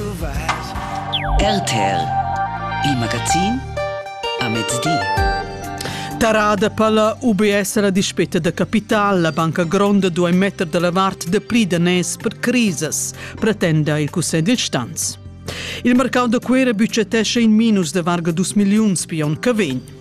RTL Il magazin a mezdi. Tarada per la UBS la dispetta da capital. La banca gronda duai metter da la vart dapli daners per crisas, pretenda il Cussegl dil Stanz. Il mercau da Cuera bucetescha in minus de varga dus milliuns pion che vegn.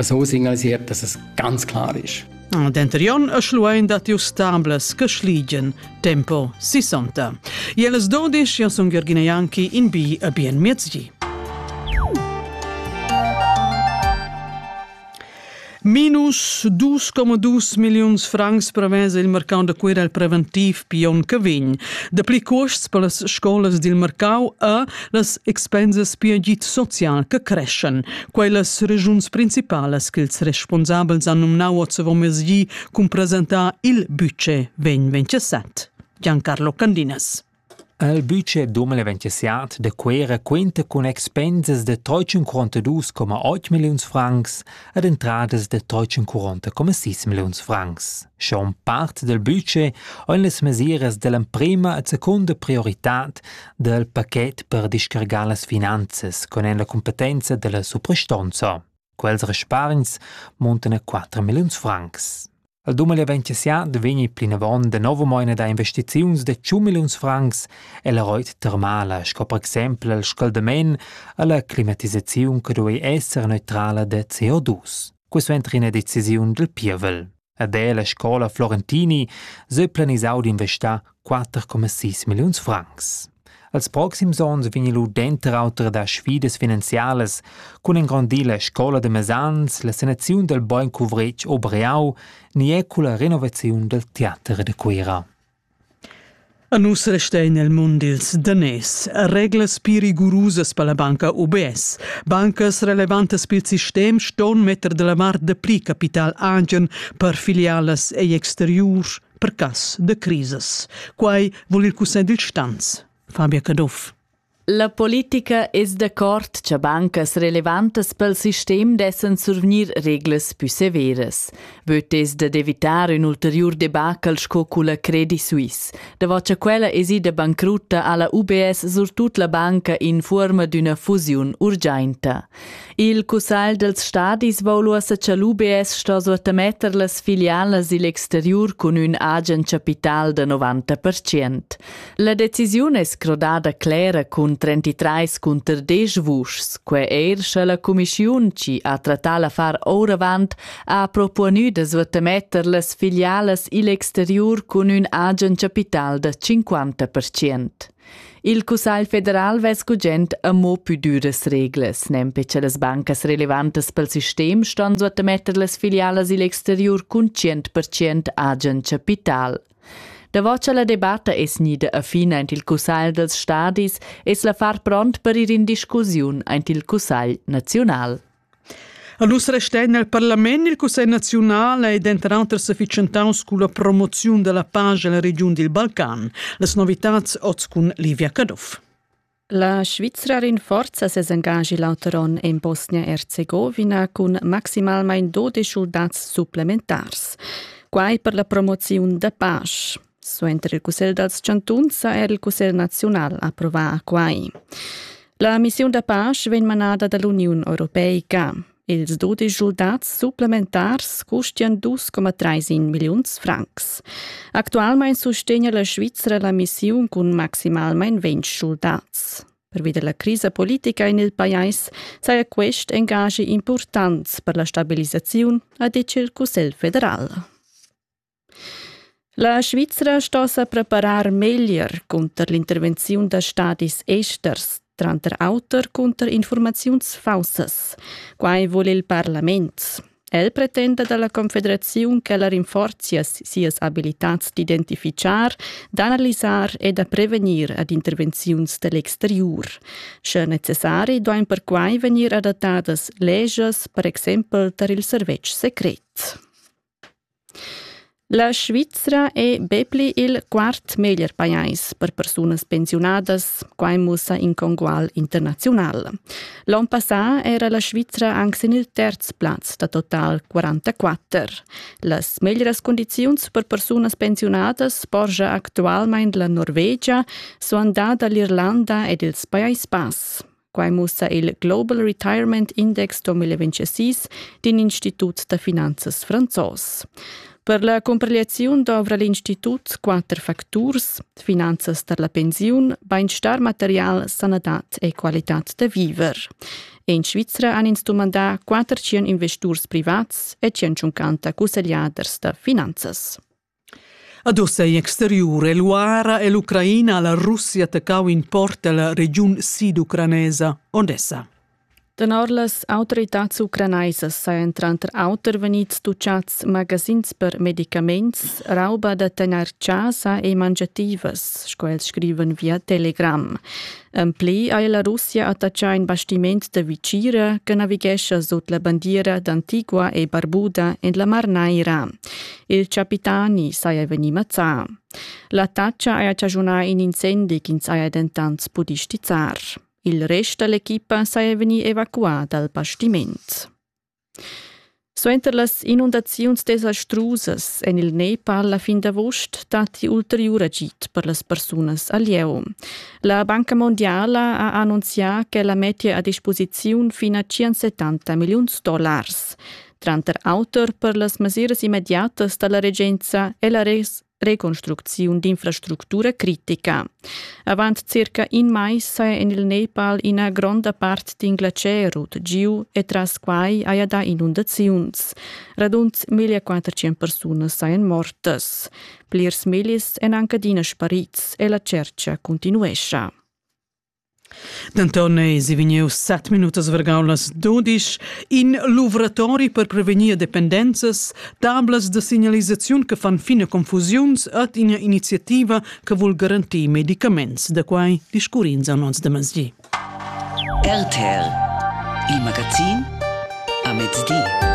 so signalisiert, dass es ganz klar ist. Ah, Denterion a schluein da tiu stamblas che schligien tempo 60. Jeles 12 io sun Gergina Janki in bi a bien miezgi. Minus 2,2 milions francs prevesa il mercau da Cuira il preventiv pion che vegn. Da pli costs per las scolas dil mercau a las expensas per git social che creschen. Quellas regiuns principalas ch'ils responsabels han numnau ozzavomezgi cun presentar il budget vegn 27. Giancarlo Candinas. Il budget 2027 de Cuera cuenta cun expensas de 342,8 milliuns francs ed entradas de 340,6 milliuns francs. Schon part dal budget ein las mesiras dall'emprema e secunda prioritad dal paquet per discargar las finanzas con en la competenza dalla suprastonza. Quels respargns muntan a 4 milliuns francs. Il dumel eventusiad vegni plinavon de novo moina da investiziuns de 100 milliuns francs e la roit termala, sco per exempel il scaldament alla climatisaziun che duei esser neutrala de CO2. Quisuenter ina decisiun dil pievel. Ed è la scola Florentini se planisau d'investar 4,6 milliuns francs. Als proxims onns vegn lu denter auter da sfidas finanzialas cun engrandir la scola de Mesans, la sanaziun del Beuncuvretg Obreau ni è culla renovaziun del teater de Cuera. A nus restein nel mund ils daners, reglas pli rigurusas per la banca UBS. Bancas relevantas pil sistem ston metter dalla vart dapli capital agen per filialas egl exteriur per cass da crisas. Quei vul il cussegl dil stanz, Fabia Caduff. La politica es dacuort cha bancas relevantas pel sistem dessan survgnir reglas pü severas. Vöd es da d'evitar ün ulteriur debacle sco culla Credit Suisse. Davo cha quella es ida bancrutta ha la UBS surtut la banca in fuorma d'üna fusiun urgiainta. Il cussagl dels stadis voul uossa cha l'UBS sto suottametter las filialas i'l exteriur cun ün agen chapital da 90%. La decisiun es crodada clera cun 33 cunter 10 vuschs, que eir scha la cumischiun chi ha trattà l'affar ouravant ha propuonü da suottametter las filialas i'l exteriur cun ün agen chapital da 50%. Il Cussagl federal vess gugent amo pü düras reglas, nempe cha las bancas relevantas pel sistem ston suottametter las filialas i'l exteriur cun 100% agen chapital. Davo cha la debatta es gnida a fin aint il Cussagl dels stadis es l'affar pront per ir in discussiun aint il Cussagl naziunal. A nus restegna il parlament il Cussegl naziunal è denter auter sefficientaus culla promoziun dalla pace nella regiun dil Balcan. Las novitads oz cun Livia Caduff. La Svizra rinforza ses engagi l'auter onn en Bosnia-Erzegovina cun maximalmein 12 schuldats supplementars. Quai per la promoziun da pace. Suenter il Cussegl dals chantuns ha er il Cussegl naziunal approvà quai. La missiun da pace vegn manada da l'Uniun europeica. Ils dudisch schuldats supplementars custian 2,3 milliuns francs. Actualmain sustegna la Svizzera la missiun cun maximalmain 20 schuldats. Pervi della crisa politica in il pajais saja quest engagi important per la stabilisaziun, ha ditg il Cussegl federal. La Svizra sto sa preparar meglier cunter l'intervenziun da stadis esters, tranter auter cunter informaziuns faussas. Quai vul il parlament. El pretenda dalla Confederaziun ch'ella rinforzia sias abilitads d'identifichar, d'analisar e da prevegnir ad intervenziuns dell'exteriur. Sche necessari duain perquai vegnir adattadas legias, per exempel tar il servetsch secret. La Svizra è be pli il quart meglier pajais per persunas pensiunadas, quai mussa in congual internaziunal. L'onn passà era la Svizra anc sin il terz plaz da total 44. Las meglieras cundiziuns per persunas pensiunadas porscha actualmain la Norvegia, suandada l'Irlanda ed ils Pajais Bass. Quai mussa il Global Retirement Index 2026 d'in institut da finanzas franzos. Per la cumpigliaziun dovra l'institut quatter facturs finanzas per la pensiun, bainstar material, sanadad e qualitad da viver. In Svizra han ins dumandà quatter tschien investurs privats e tschient cusseggliaders da finanzas. Ad ussa in exteriur è l'URA e l'Ucraina a la Russia attaccau in port ella regiun siducranesa Odessa. Tenor las autoritads ucranaisas sajan tranter auter vegnids tutgads magazins per medicaments, rauba da tegnair chasa e mangiativas, sco els scrivan via Telegram. En pli ha la Russia attaccà in bastiment da Vicira che navighescha sut la bandiera d'Antigua e Barbuda en la Mar Naira. Il capitani saja vegnì mazzà. L'attacca haja chaschunà in incendi ch'ins haja dentant pudì stizzar. Il rest da l'equipa saja vegnì evacuà dal bastiment. Suenter las inundaziuns desastrusas en il Nepal la fin d'avust datti ulteriur agid per las persunas al lieu. La Banca Mondiala ha annunzià ch'ella mettia a disposiziun fino a 170 milliuns dollars. Tranter auter per las mesiras immediatas da la regenza è la res reconstrucziun d'infrastructura critica. Avant circa in mais saja en il Nepal ina gronda part din glacerut giu e tras quai haja dà inundaziuns. Radund 1400 persunas sajan mortas. Plirs millis èn anche adina sparids e la cerca continuescha. Denton eisi vegnius set minutas vargau las dudisch. In luvratori per prevegnir dependenzas, tablas da signalisaziun che fan fina confusiuns ed ina iniziativa che vul garantir medicaments. Da quai discurrins a nons de mezdi. RTL, il magazin a mezdi.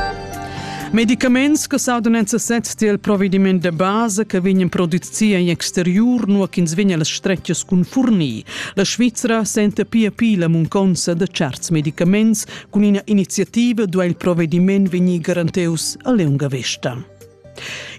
Medicaments che saudan necessits tiel provediment de base che vegnan produzzi in exterior, nua ch'ins vegn las stretgas cun fornir. La Svizra senta pia pi la munconza da certs medicaments. Cun ina iniziativa duai il provvediment vegnir garanteus a lunga vesta.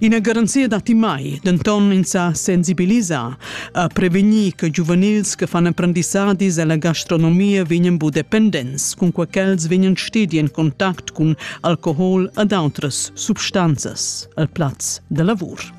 Ina garanzia datti mai, denton ins sa sensibilisar a prevenir che giuvenils che fanno apprendizzadis alla gastronomia vegnan bu dependents, cun quei ch'els vegnan stedi en contact cun alcohol ad outras substanzas al plaz da lavur.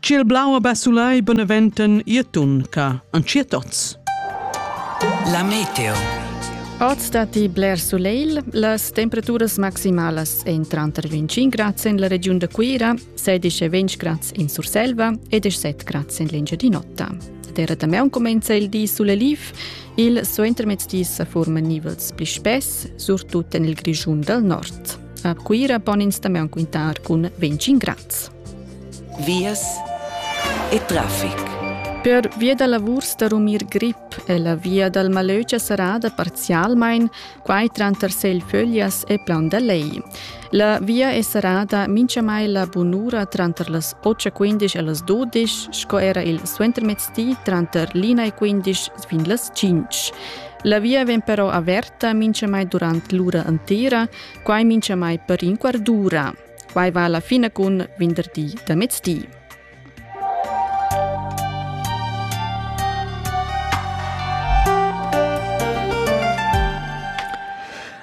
Ciel blau a Bassulai beneventen Irtunca an Cirtoz. La meteo. Oz datti bler sulegl, las temperaturas maximalas èn tranter 25 grads en la regiun da Cuira, 16 e 20 grads in Surselva e 17 grads en l'Engiadin'Ota. Terra da meun comenza il di suleliv, il suentermezdi sa forman nivels pli spess, surtut en il Grischun dal nord. A Cuira pon ins da meun quintar cun 25 grads. vias e traffic. Per via da lavurs da rumir grip è la via dal Malögia serrada parzialmain, quai tranter Selföglias e Plan da Lei. La via è serrada minchamai la bunura tranter las 8.15 e las 12, sco era il suentermezdi tranter l'ina e 15 fin las 5. La via vegn però averta minchamai durant l'ura entera, quai minchamai per in quart d'ura. Quai va la fina cun venderdi da mezdi.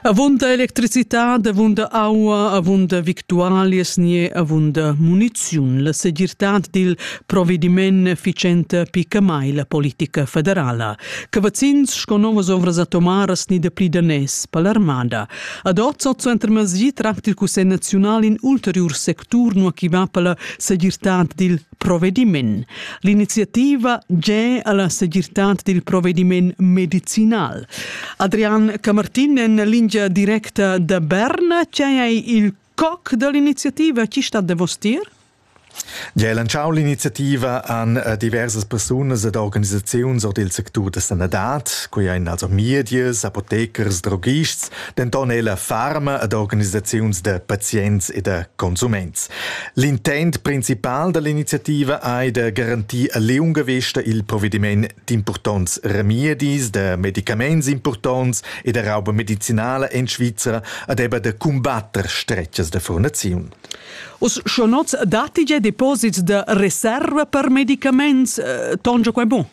Avunda electricità, avunda aua, avunda victualias nie avunda muniziun. La segirtad dil provvediment efficiente pica mai la politica federala. Cavazzins sco novas ovras atomaras ni da pli danès per l'armada. Ad ot sot suenter masgi tracta il Cussegl naziunal in ulteriur sectur nua chi va per la segirtad dil provvediment. L'iniziativa ge alla segirtad dil provvediment medicinal. Adrian Camartin en lingia directa da Bern, c'è il Coc da l'iniziativa chi stat davostier? Gia lantschau l'iniziativa han eh, diversas persunas ed organisaziuns ord il sectur da sanadad, quei ein also medias, apothecers, droghists, denton ella farma ed organisaziuns da pazients e da consuments. L'intent principal dall'iniziativa ei da garantir a liunga vesta il provediment D'impurtonts remedis, da medicaments impurtonts e da rauba medicinala en Svizra adeba da cumbatter stretgas da furnaziun. Uss schon oz datti gia deposits da reserva per medicaments. Eh, tongia quai bon?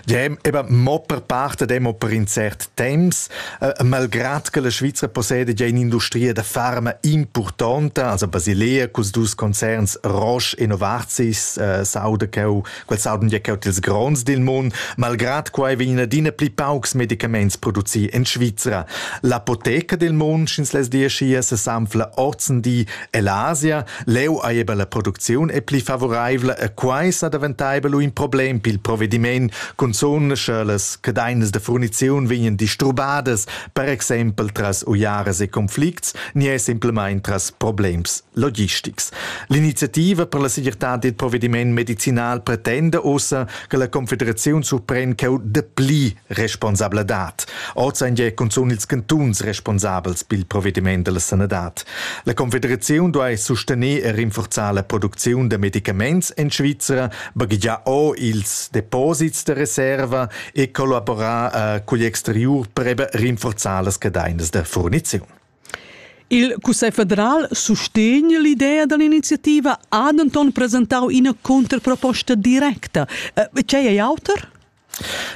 Ja, eben, mo per parte demo per in cert temps, äh, malgrad che la Svizra possiede già un'industria da farma importante, also Basilea, cus dus concerns Roche e Novartis, äh, Saudacau Quels haben ja caut ils grons dil mund, malgrad quai vegnan adina pli paucs medicaments producì en Svizra. L'apoteca del mund sch'ins les diaschia sesanfla ozendi ell'Asia, leu ei eben la producziun è pli favoreivla e quai sa daventaiba lu in problem pil provvediment, cunzun sche las cadeinas de furniziun vegnan disturbadas, per exempel tras uiaras e conflicts, ni è simplemein tras problems logistics. L'iniziativa per la segirtad dil provvediment medicinal pretenda ussa che la Confederaziun surpren cheu dapli responsabladad. Oz ein ja cunzun ils cantuns responsabels pil provvediment dalla sanadad. La Confederaziun duai sustener e rinforzar la producziun da medicaments en Svizra, baghegiar o ils deposits da reserva e collaborar eh, cugl exteriur per rinforzar las cadeinas da furniziun. Il Cussegl federal sustegn l'idea dall'iniziativa ha denton presentau ina contraproposta directa. Tgei eh, ei auter?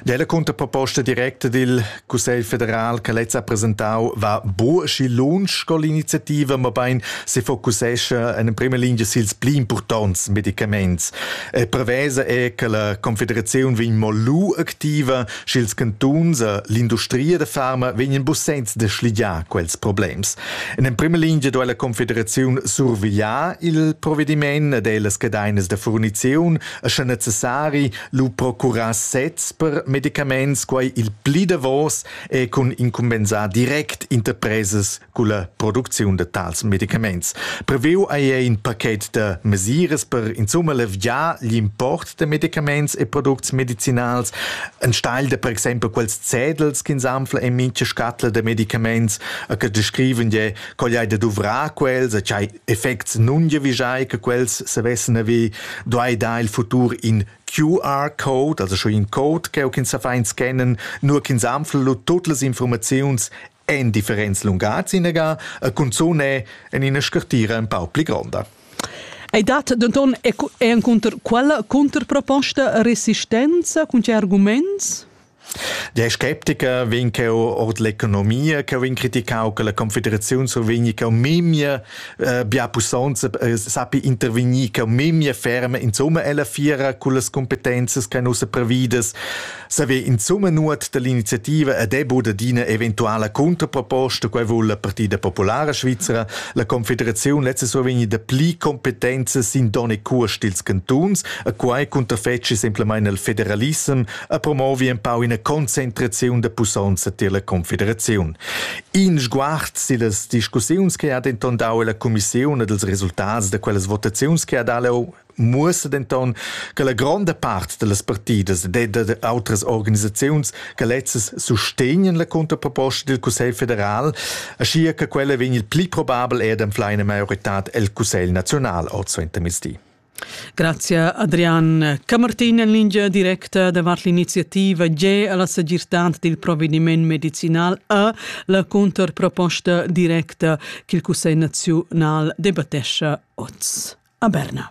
Della contraproposta directa dil Cussegl federal che lez ha presentau va bu schi lunsch con l'iniziativa, ma bein se focussescha en prima linea sils pli impurtonts medicaments. E prevesa è che la Confederazione vegn mo lu activa sch'ils cantuns e l'industria da farma vegnan bussents da schligiar quels problems. En emprima lingia duai la Confederaziun survigliar il provediment ed ellas cadainas da furniziun e sche necessari lu procurar sezs per medicaments, quai il pli davos e cun incumbensar direct interpresas culla producziun da tals medicaments. Previu ei in paket da mesiras per insumma leviar l'import da medicaments e products medicinals, enstagl da per exempel quels cedels ch'ins anfla en mintga scatla da medicaments, a che descriven je quegl hai da duvrar quels, a ch'hai effects nun vigiai che quels savessen avi, duai da il futur in QR-Code, also schon in Code che ins sa fa in scannen, nur ch'ins anfla tut las informaziuns en differents lungatgs inegà e cunzun è en ina scartira empau pli gronda. Ei dat denton encunter quella contraproposta resistenza cun tgei arguments? Der Skeptiker vegn cheu ord l'economia cheu vegn criticau che la confederaziun survegni cheu memia eh, bia pussonza eh, sappi intervegnir cheu memia ferme insomma ella fiera con las competenzas che nus previdas Saver insumma nuot dall'iniziativa ed è bod adina eventuala contraproposta, quai vul la Partida Populara Svizzera. La Confederaziun lezza survegni da pli competenza sin donne curs dils cantuns, a quai cunterfeci semplamain il federalissem a promovi en pau ina concentraziun da pussonza tier la Confederaziun. In sguard sillas discussiuns che ha denton dau la Commissiun ed ils resultats da quellas votaziuns che ha dau muossa denton che la gronda part dallas partidas ed da outras organisaziuns che lezzas sustegnan la contraproposta dil Cussegl federal, aschia che quella vegn il pli probabel ed anfla ina maioritad el Cussegl nazional oz suenter mezdi. Grazie Adrian. Camartin en lingia directa davart l'iniziativa G alla segirtad dil provvediment medicinal a la contraproposta directa ch'il Cussegl naziunal debattescha oz a Berna.